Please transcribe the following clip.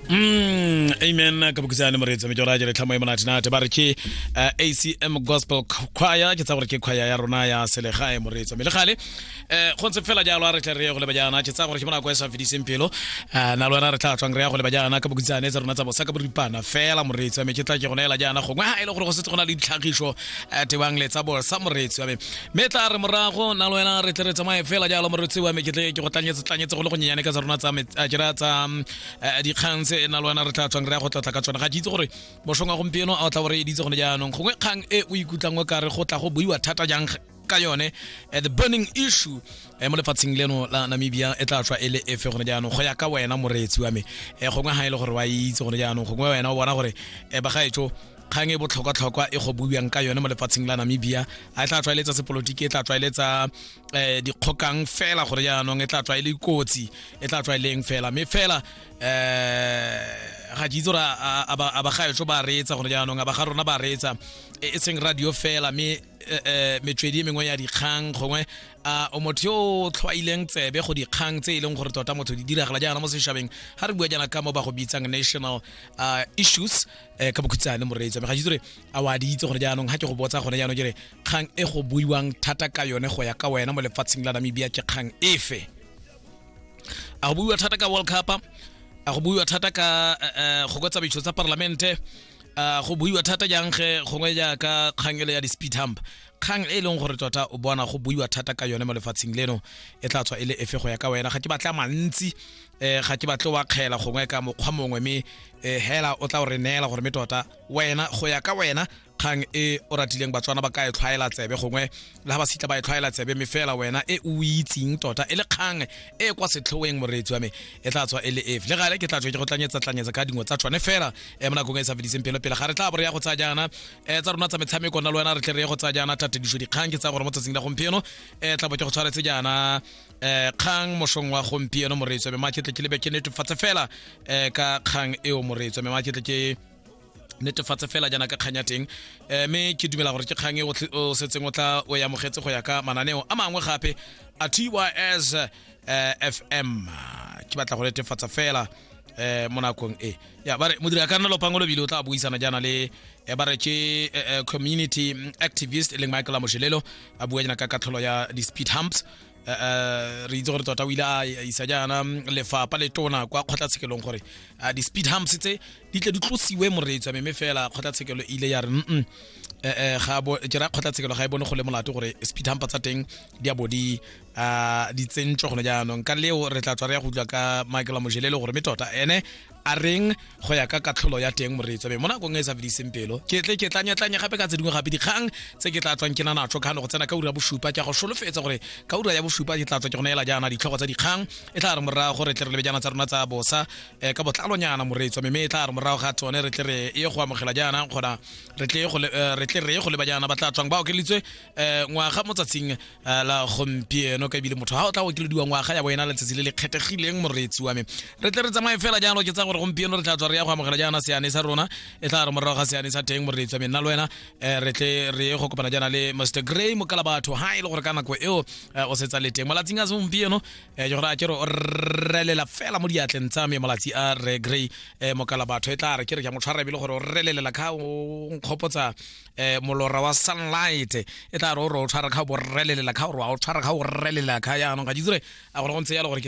Mm, amen ka bokisane moreetsi me ke gore a jere tlhamo e monatinate ba re ke uh, eh, acm gospel choir ke tsa gore ke choir ya rona ya selegae moreetsi me le gale um go ntse fela jalo a re tle re ye go leba jaana ke tsa gore ke monako e sa fediseng pelo um na le wena re tla tswang re ya go leba jaana ka bokisane tsa rona tsa bosa ka boripana fela moreetsi me ke tla ke go neela jaana gongwe ga e le gore go setse go na le ditlhagiso um tebang le tsa bosa moreetsi wa me mme tla re morago na le wena re tle re tsamaye fela jalo morotsi wa me ke tle ke go tlanyetse go le go nyenyane ka tsa rona tsa jera tsa eh, dikgang tse na le wena re tla tswang re ya go tlatla ka tsone ga ke itse gore mošong wa gompieno a o tla gore editse gone jaanong gongwe kgang e o ikutlwang o kare go tla go buiwa thata jang ka yone eh, the burning issue eh, mo lefatsheng leno la namibia e tla tswa e le efe gone jaanong go ya ka wena moreetsi wa me gongwe ga e le gore wa itse gone jaanong gongwe wena o bona gore bagaetso kgang e botlhokwa-tlhokwa e go buiwang ka yone mo lefatsheng la namibia a e tla tlwaeletsa sepolotiki e tla tlwaeletsa um dikgokang fela gore jaanong e tla tlwaele kotsi e tla tlwaeleng fela mme fela um ga ke itse gore a bagaetso ba reetsa gore jaanong a ba ga rona ba reetsa e, e seng radio fela mme um metswedi e mengwe ya dikgang gongwe a o motho yo o tlhwaileng tsebe go dikgang tse e leng gore tota motho di diragala jaana mo setšhabeng ga re bua jaana ka mo ba go bitsang national issues um ka bokhutshane moreetsa me ga itse gore a wa di itse gone jaanong ga ke go botsa gone jaanong kere kgang e go buiwang thata ka yone go ya ka wena mo lefatsheng la namibia ke kgang efe a go buiwa thata ka world cup a go buiwa thata ka eh, eh, go kwa tsamaiso tsa parlamente a go buiwa thata jang ge gongwe jaaka kgang ele ya di-speed hump kgang e e leng gore tota o bona go buiwa thata ka yone mo lefatsheng leno e tla tswa e le efe go ya ka wena ga ke batla mantsi um ga ke batle wa kgela gongwe ka mokgwa mongwe mme um hela o tla o re neela gore mme tota wena go ya ka wena kgang e o ratileng batswana ba ka e tlhwaela tsebe gongwe le ga ba sitla ba e tlhwaela tsebe mme fela wena e o itseng tota e le kgang e kwa setlhoeng moreetsi wa me e tla tswa e le efe le gale ke tla tswa ke go tlanyetsa-tlanyetsa ka dingwe tsa tshwane fela e mo nakong e sa fediseng pelo pele ga re tla bo re ya go tsaya jaana um tsa rona tsa metshameko na le wena re tle re ye go tsaya jaana tatediso dikgang ke tsaya gore mo tsatsing la gompieno um tla bo ke go tshwaretse jaana eh kgang mosong wa gompieno moreetso mme ke tle ke lebe ke netefatse fela eh ka kgang eo moreetso mme ke tle ke netefatse fela jaana ka kgang ya teng eh, mme ke dumela gore ke kgang e o setseng o tla o e amogetse go ya ka mananeo a mangwe gape a tys eh, fm ke batla go netefatsa fela eh mo nakong e ya bare modiri a ka nna lopango lobile o tla buisana jaana le eh, ba re ke eh, eh, community activist e leng michael amoshelelo a bua jana ka katlholo ya di-speed humps eh, eh, re itse gore tota o ile a isa jaana mm, lefapa le tona kwa kgotlatshekelong gore eh, di-speed humps tse di tle di tlosiwe moreetso ya meme fela kgotlatshekelo ile ya re mm eh ga bo ke ra kgotlatshekelo ga e bone go le molato gore speed hump tsa teng di a bo di a di tsentšwe gone jaanong ka leo re tla tswa re ya go utlwa ka michael amojelele gore me tota ene a reng go ya ka katlholo ya teng moreetso be mo nakong e e sa fediseng pelo ke tle ke tlanyatlanye gape ka tse dingwe gape dikgang tse ke tla tswang ke na natso kgano go tsena ka ura ya bosupa ke a go solofetsa gore ka ura ya bosupa ke tla tswa ke go neela jaana ditlhogo tsa dikgang e tla re morago gore tle re lebe jaana tsa rona tsa bosa um ka botlalonyana moreetso mme e tla re morago ga tsone re tle re ye go amogela jaana kgona re tle re ye go leba jaana ba tla tswang ba okeleditswe um ngwaga mo tsatsing Ah, la gompieno ka ebile motho ga o tla okelediwa ngwaga ya bo ena letsatsi le le kgethegileng moreetsi wa me re tle re tsamaye fela jalo ke tsa gore gompieno re tla tswa re ya go amogela jaana seane sa rona e tla re morago ga seane sa teng moreetsi wa me nna le wena eh, re tle re ye go kopana jaana le mr gray mokala batho ha e le gore ka nako eo eh, o setsa le teng malatsing a segompieno eh, ke gore a ke re o relela fela mo diatleng tsa me malatsi a re gray eh, mokala batho e tla re ke re ke a mo tshwara ebile gore o relelela kha o nkgopotsa eh molora wa sunlight e tla re o re o tshwara kha borrelelela kha o re wa o tshwara kha o rrelelela kha ya anong ga jitsure a gore go ntse ya le gore ke